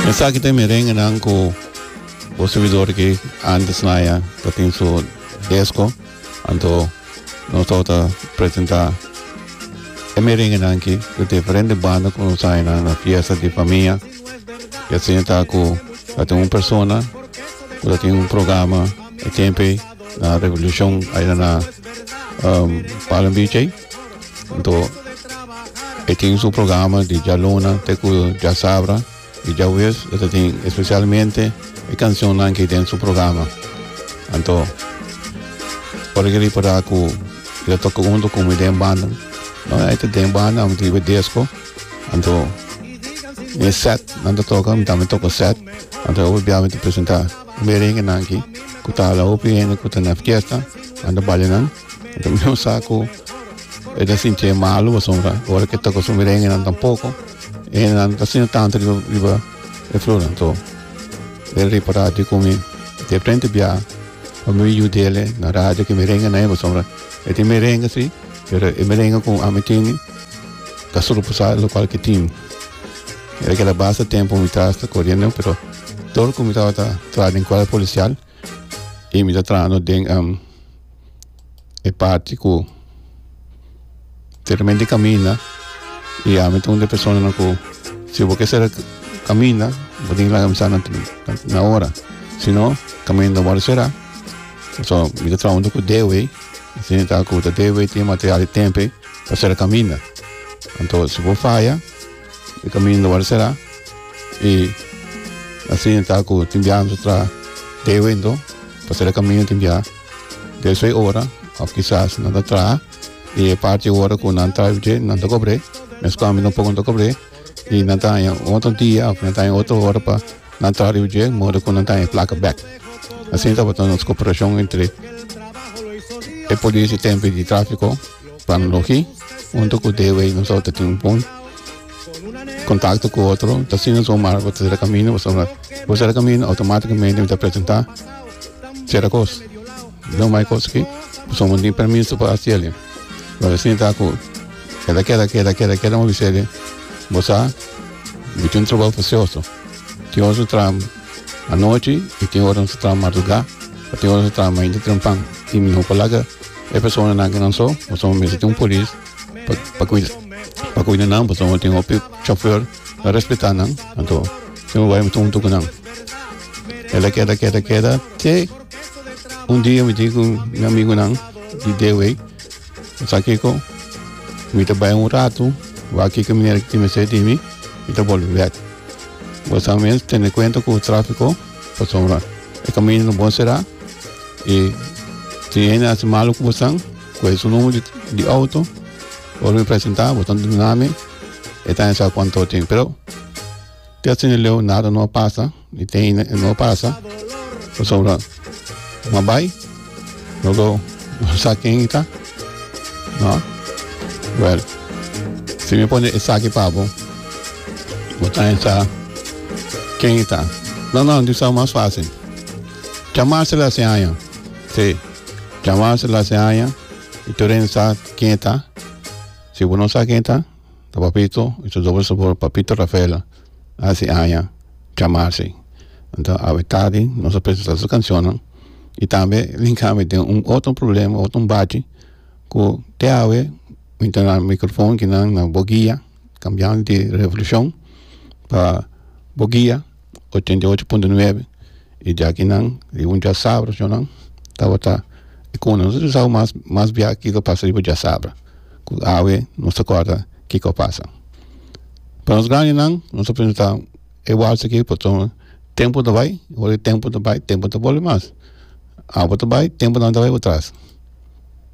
Esaki ta e merengenan ku bo servidor aki antes na ya ta tin su desko. Anto nos tabata ta presentá e merengenan aki ku diferente banda ku nos haña nan na fiesta di famia. Ya sea ta ku ta tin un persona ku ta tin un programa e tempu ei na Revolucion aera na um Palm Beach ei. Anto e tin su programa di djaluna te ku djasabra i djawies e ta tin espesialmente e kansionnan ki den su programa anto ora ke ripará ku e ta toka huntu ku mi den banda no e ta den banda amo ta yiba desko anto mi e set nan ta toka mi tambe toka set anto e ober bia mi ta presentá Merengenan aki ku ta hala hopi hende ku ta na fiesta a na bale nan e ta mihó sa ku e ta sinti e malu pasobra ora ke toka su merenge nan tampoko e hende nan no ta asina tantu riba riba e flor nan so el ripara di ku mi de frente bia pa mi yu dele na radio ke merenge na e pasobra e tin merenge si pero e merenge ku ami tini ta sulu pasá lokual ke tin Mi a keda basta tempo mi ta sta corriendo, pero todo cu mi tabata tra den cuadro policial y mi ta trabajando den um, e parte cu teramente camina y a mi ta una persona no cu si vos que ser camina, vos tiene que laga mi sana na hora. Si no, camina no va a será. So, mi ta trabajando cu D-Way, si mi ta cu ta D-Way tiene material y tempo para ser camina. Entonces, si vos falla, E kaminda no wòrdu será i asi nan ta ku tin biaha mi ta traha deo anto pa sera kaminda tin biaha deo seis ora òf kisas nan ta traha i e parti e ora ku nan ta avitié nan ta kobr'é mes kòmpi nan poko nan ta kobr'é i nan ta haña un otro dia òf nan ta haña otro ora pa nan traha riba dje modo ku nan ta haña e plaka bèk asi tabata nos koperashon entre e polis i tempe di tráfiko. Tan loke hunto ku Dewey nos tabata tin un bon kontakto ku otro ta asina nos Omar bo ta sera kamino pasobra bo sera kamino outomaticamente mi ta presenta cierta kos lo mas kos aki pasobra bo no tin permiso pa hasi ele lo asina ta ku keda keda keda keda keda mi bisa ele bo sa bo tin un trabou precioso tin ora nos ta traha anochi y tin ora nos ta traha madruga y tin ora nos ta traha mainta trempan y mi no por laga E personanan kinan so, pasobra mi mester tin un polis pa pa kuida pa kuida nan, pasobra tin hopi chofer ta respetá nan, anto mi a bai mi ta huntu ku nan. El a keda keda keda te un dia mi tin ku mi amigunan di D-way, sa kiko mi ta bai un ratu wak a kiko manera tin mester di mi, mi ta bolbe bek, pasobra mi a tene kuenta ku trafiko Pasobra e kaminda no bon será i si hende a hasi malu ku bosan, kohe su numero di outo, ora mi presentá bo tantu duna mi, e ta hende sa ku anto tin. Pero te asina e leu nada no a pasa i te hende no a pasa pasobra mi a bai. No lo sa ken i ta? No? Well, si mi pone esaki pa bo, bo ta sa ken i ta? No, no, di sa mas fácil. Chamarse la se aña. Sí, chamarse la se aña. I tur sa ken i ta? Si bo no sa ken i ta, ta papito y ta doble sabor papito rafael haci aña chamasi enta awe tardi nos ta presenta su cancionnan y tambe linkado mi den un otro problema otro bachi cu te awe mi ta na microfon kinan na bokia cambiando di revolucion pa bokia. ochenta i ocho punto nuebe y dje akinan riba un djasabra chonan tabata y como nos a usa mas mas bia kico a pasa riba djasabra cu awe nos ta corda kico a pasa pa nos grandenan nos ta pensa ta e walse aqui pasobra tempo ta bay ora e tempo ta bay tempo ta bolbe mas awe ta bay tempo nan ta bay para atras.